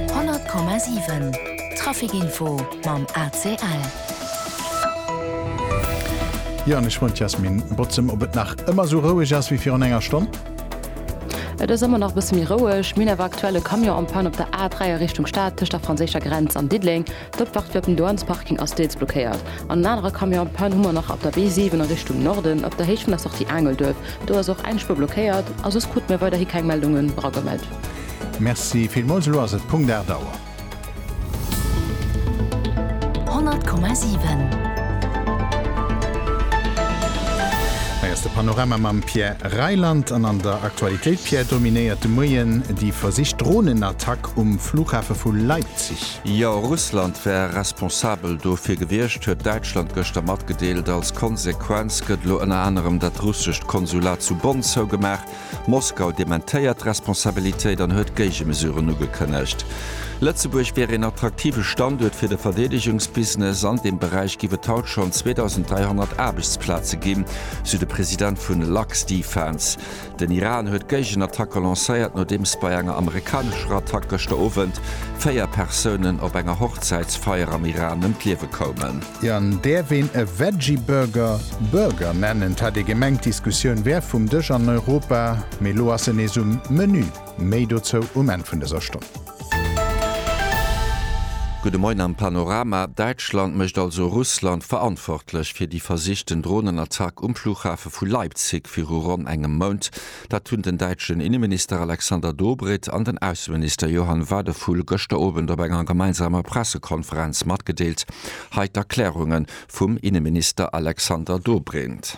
100,7 Trafic Info mam ACL. Jo an ech wollt d'Yasmin Bozem, ob et nach ëmmer esou roueg ass wéi virun enger Stonn? Et ass ëmmer nach e bësse méi roueg. Mir hunn awer aktuell e Camion en panne op der A3 a Richtung Stad tëscht der franséischer Grenz an Diddeleng. D'Opfahrt fir op den Douanesparking ass deels blockéiert an en anerer Camion en panne hu mer nach op der B7 a Richtung Norden op der Héicht vun der Sortie Aangelduerf. Do ass och eng Spuer blockéiert a soss krute mir weiderhi keng Meldungen eragemellt. Merci villmools, elo ass et Punkt 8 Auer. 100,7. Hei ass de Panorama mam Pierre Reyland an an der Aktualitéit, Pierre, dominéiert de Moien déi versicht Dronenattack um Flughafe vu Leipzig. Jo, Russland wär responsabel dofir gewiescht, huet Däitschland gëschter matgedeelt. Als Konsequenz gëtt elo ënner anerem dat russescht Konsulat zu Bonn zougemaach. Moskau dementéiert d'Responsabilitéit an huet Géigemesuren ugekënnegt. Lëtzebuerg wier een attraktive Standuert fir de Verdeedegungsbusiness. An deem Beräich giff et haut schonn 2.300 Aarbechtsplaze ginn, sou de President vun Luxdefence. Den Iran huet d'Géigenattacke lancéiert, nodeems bei enger amerikanescher Attack gëschter Owend véier Persounen op enger Hochzäitsfeier am Iran ëm d'Liewe koumen. Jan, däerf een e Veggie Burger Burger nennen? T hat ee gemengt d'Diskussioun wär vum Dësch an Europa, mee lo ass en nees um Menü. Méi dozou um Enn vun dëser Stonn. Gudde Moien am Panorama, Däitschland mécht also Russland verantwortlech fir déi versichten Dronenattack um Flughafe vu Leipzig viru ronn engem Mount. Dat hunn den däitschen Inneminister Alexander Dobrindt an den Ausseminister Johann Wadephul gëschter Owend op enger gemeinsamer Pressekonferenz matgedeelt. Hei d'Erklärunge vum Inneminister Alexander Dobrindt.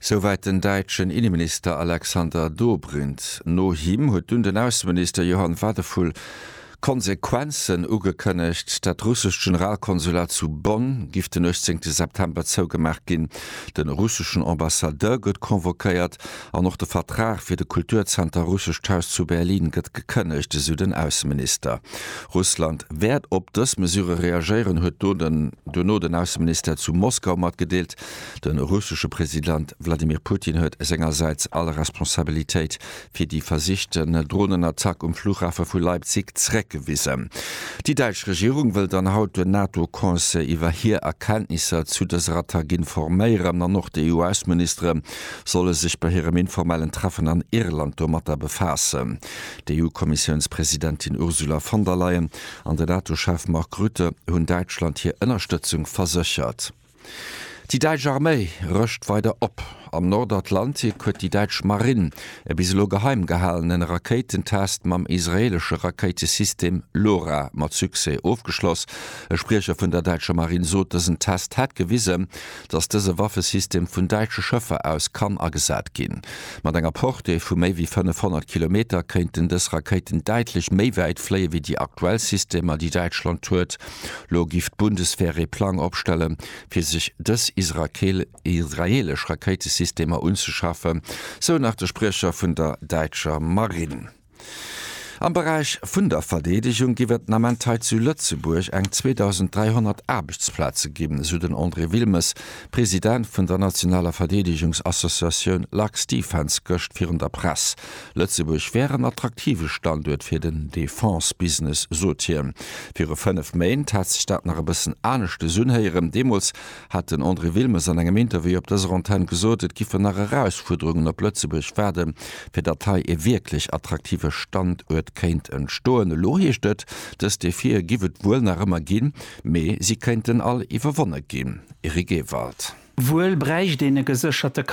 Souwäit den däitschen Inneminister Alexander Dobrindt. No him huet dunn den Ausseminister Johann Wadephul Konsequenzen ugekënnegt. Dat russescht Generalkonsulat zu Bonn giff den 18 September zougemaach ginn, den russeschen Ambassadeur gëtt convoquéiert an och de Vertrag fir de Kulturzenter Russescht Haus zu Berlin gëtt gekënnegt, esou den Ausseminister. Russland wäert op dës Mesure reagéieren, huet duerno den Ausseministère zu Moskau matgedeelt. De russesche President Wladimir Putin huet sengersäits all Responsabilitéit fir déi versichten Dronenattack um Flughafe vu Leipzig zréckgewisen. Déi däitsch Regierung wëll dann haut den NATO-Conseil iwwer hir Erkenntnisser zu dëser Attack informéieren an och déi US-Ministere solle sech bei hirem informellen Treffen an Irland domatter befaassen. D'EU-Kommissiounspresidentin Ursula von der Leyen an den NATO-Chef Mark Rutte hunn Däitschland hir Ënnerstëtzung verséchert. Déi däitsch Arméi rëscht weider op. Am Nordatlantik huet déi däitsch Marinn e bis elo geheim gehalenen Rakéitentest mam israeelesche Rakéitesystem LORA mat Succès ofgeschloss. E Spriecher vun der däitscher Marinn sot, dësen Test hätt gewisen, datt dëse Waffesystem vun däitsche Schëffer aus kann agesat ginn. Mat enger Portée vu méi wéi 500 Kilometer kéinten dës Rakéiten däitlech méi wäit fléie wéi déi aktuell Systemer, déi Däitschland huet. Lo giff d'Bundeswehr ee Plang opstellen, fir sech dës israeelesch Rakéitesystemer unzeschafen, sou nach de Spriecher vun der däitscher Marinn. Am Beräich vun der Verdeedegung giff et den Ament hei zu Lëtzebuerg eng 2.300 Aarbechtsplaze ginn, sou den André Wilmes, President vun der nationaler Verdeedegungsassociatioun LuxDefence gëscht virun der Press. Lëtzebuerg wär en attraktive Standuert fir den Defense-Business, sot hien. Viru fënnef Méint hat sech dat nach e bëssen anescht des unhéieren. Deemools hat den André Wilmes an engem Interview op dëser Antenn gesot, et giffen nach Erausfuerderungen op Lëtzebuerg waarde fir datt hei ee wierklech attraktive Standuert kéint entstoen. Elo heescht et, dës Defië giff et wuel nach ëmmer ginn, mee si kéinten all iwwerwonne ginn. Eric Ewald. Wuel bräicht een e gesécherte.